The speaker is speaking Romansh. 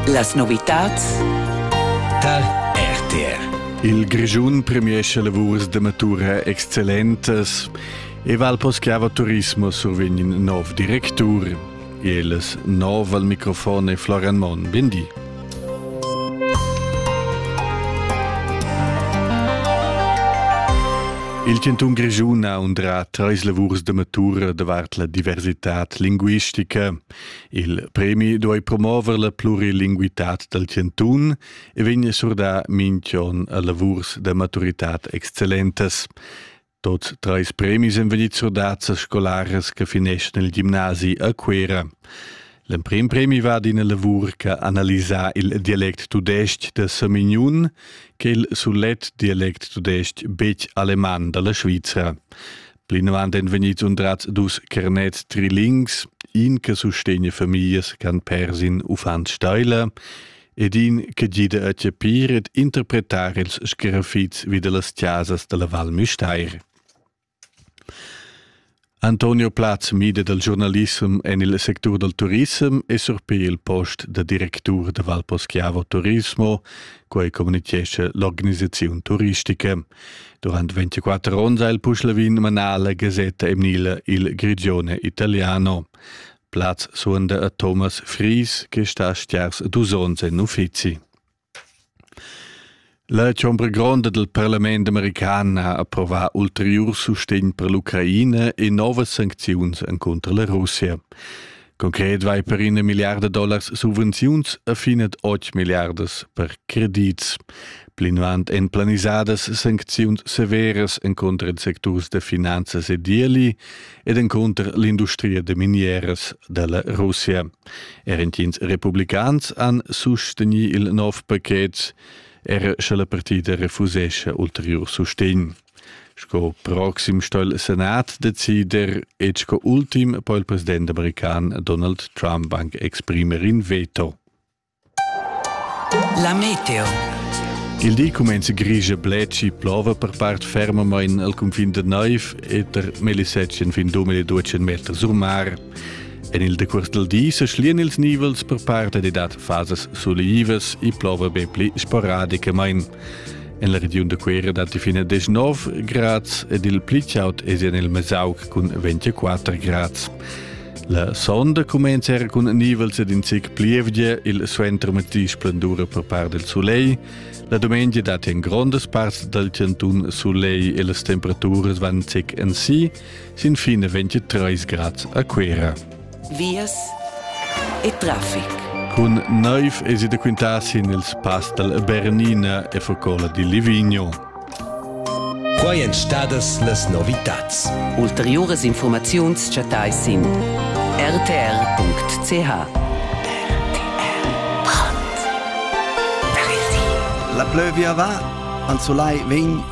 Las novitads tar RTR. Il Grischun premiesce lavurs da matura excellentas e val poschiava turismo survegn nov directur. Els nov al microfon e Florian Mon. Bendi. Il Cantun Grischun ha undrà treis lavurs da matura davart la diversitad linguistica. Il premi duei promover la plurilinguitad dal chantun e vegn surdà minch'on a lavurs da maturitad excellentas. Tot treis premis èn vegnids surdats a scolaras che fineschan il gimnasi a Cuera. L'emprim premi va d'ina lavur che analisa il dialect tudestg da Samignun che il sulet dialect tudestg betg aleman da la Svizra. Plinavant èn vegnids undrads dus Kernet trilings, in che sustegna famiglias ch'han pers in uffant steila ed in che gida a chapir ed interpretar ils scaraffits vi da las chasas da la Val Müstair. Antonio Platz mida dal giornalissem en il sectur dal turissem e surpir il post da directur da Valposchiavo Turismo, quai communitgescha l'organisaziun turistica. Durant 24 onns ha il Puschlavin manà la gasetta emnila Il Grigione Italiano. Plaz suonda a Thomas Fries, che sta a stiars dus onns en uffizi. La chombra gronda del parlament american ha approvà ulterior sustegn per l'Ucraina e novas sancziuns contro la Russia. Concret vai per ina milliarda dollars subvenziuns a finet 8 milliardas per credits. Plinavant en planisadas sancziuns severas encontro ils secturs de finanzas e deli ed encontro l'industria de minieras della Russia. Er entins republicans han susteni il nov paket, er sche la partita refusesce ulterior sustegn. Sco proxim sto il senat decider e sco ultim po il president american Donald Trump anc exprimer in veto. La meteo. Il di cumenza grigia bleci plova per part fermamain al confin da Neuf e der Melissettchen fin 2200 meter sul mar. En il decurs del di se schlien ils nivels per parte de dat fasas sulivas e plova be pli sporadicamain. En la regiun da Cuera datti fin a 19 grads ed il pli chaud è en il Mesauc cun 24 grads. La sonda cumenza era cun nivels ed in zic plievgia, il suenter metti splendura per part del soleil. La domenica datti en grondas parts dal chantun soleil e las temperaturas van zic en si. Si. Sin fine 23 grad a Cuera. Vias e traffic. Cun naiv esi da quintar sin ils pass dal Bernina e Focola di Livigno. Quai èn stadas las novitads. Ulteriuras informaziuns chattai sin rtr.ch. La plövia va, Anzolai vegn